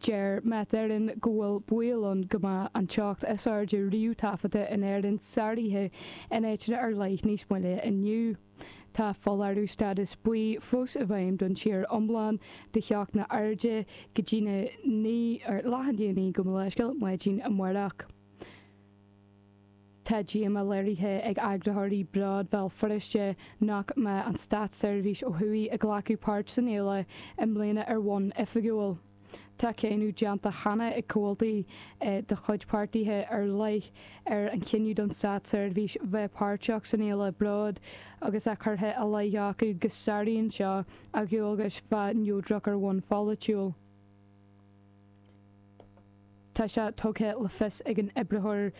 Deir Met Éireann go bhfuil baol ann go mbeadh an teocht is airde riamh taifeadta in Éirinn sáraithe in áiteanna ar leith níos moille inniu. Tá foláireamh stádas buí fós i bhfeidhm don tír iomlán do theochtanna arda go dtí na 9 ar leath i ndiaidh 9, gabh mo leithscéal, maidin amáireach. Tá díomá léirithe ag eagraitheoirí Bród Bhéal Feirste nach mbeidh an státseirbhís ó thuaidh ag glacadh páirt san fhéile i mbliana ar bhonn oifigiúil. Tá cáineadh déanta cheana ag comhaltaí de chuid páirtithe ar leith ar an chinneadh don státseirbhís bheith páirteach san fhéile Bród agus é curtha ina leith acu go sáraíonn seo a ndualgais bheith neodrach ar bhonn pholaitiúil. Tá sé tugtha le fios ag an oibritheoir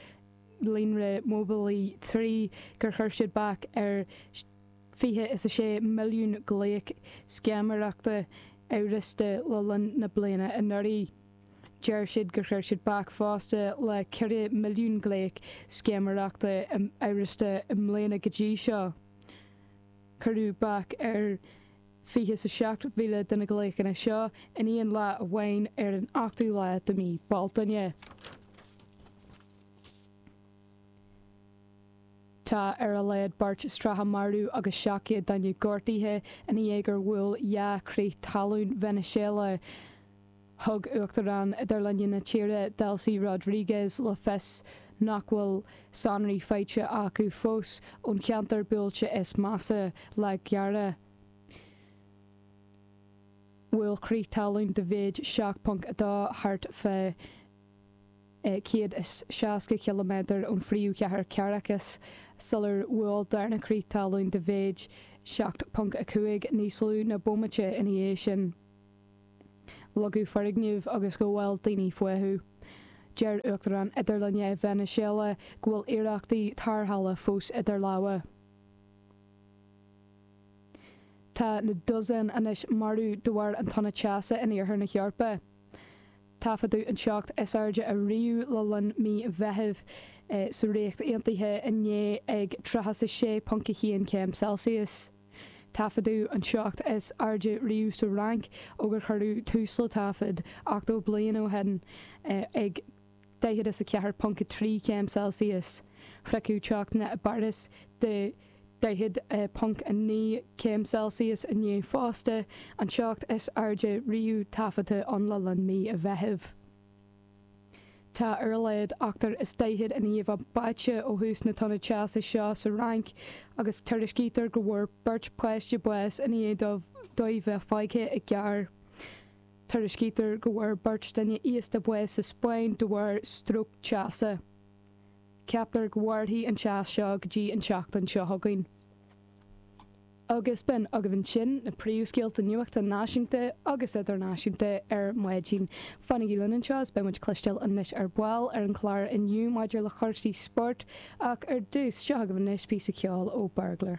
líonra móibíleach 3 gur chuir siad bac ar fiche is a sé milliún glaoch scéiméireachta amhrasta le linn na bliana anuraidh. Deir siad gur chuir siad bac fosta le ceithre milliún glaoch scéiméireachta amhrasta i mbliana go dtí seo. Cuireadh bac ar. Fiche 's a seacht mhíle de na glaochanna seo in aon lá amháin ar an ochtú lá de mhí Bealtaine. Tá ar a laghad beirt is tríocha marbh agus seacht gcéad duine gortaithe ina dhiaidh gur bhuail dhá chrith talún Veiniséala. Thug Uachtarán idirlinne na tíre, Delcy Rodriguez, le fios nach bhfuil sonraí faighte acu fós ón cheantar buailte is measa, La Guaira. Bhuail crith talún de mhéid 7.2 thart fá 160 ciliméadar ón phríomhchathair Caracas sular bhuail darna crith talún de mhéid 7.5 níos lú ná bomaite ina dhiaidh sin. leagadh foirgnimh agus go bhfuil daoine fúthu. Deir Uachtarán idirlinne Veiniséala go bhfuil iarrachtaí tarrthála fós idir lámha. Tá na dosaen anois marbh de bharr an tonna teasa in iarthar na hEorpa. Taifeadadh an teocht is airde ariamh le linn mí Mheithimh sa Ríocht Aontaithe inné ag 36.1 céim Celsius. Taifeadadh an teocht is airde riamh sa Fhrainc ó gur cuireadh tús le taifead 80 bliain ó shin ag daichead is a ceathair ponc a trí céim Celsius. Sroicheadh teochtanna i bPáras de daichead ponc a naoi céim Celsius inné fosta, an teocht is airde riamh taifeadta ann le linn mí an Mheithimh. Tá ar a laghad ochtar is daichead i ndiaidh a mbáite ó thús na toinne teasa seo sa Fhrainc agus tuairiscítear go bhfuair beirt pháiste bás i ndiaidh dóibh bheith fágtha i gcarr. Tuairiscítear go bhfuair beirt duine aosta bás sa Spáinn de bharr stróc teasa. Ceaptar go mhairfidh an teas seo go dtí an tseachtain seo chugainn. agus b'in agaibh ansin na príomhscéalta nuachta náisiúnta agus idirnáisiúnta ar maidin. Fanaigí linn anseo is beidh muid ag cloisteáil anois ar ball ar an chlár inniu maidir le cúrsaí spóirt, ach ar dtús, seo agaibh anois píosa ceoil ó Burglar.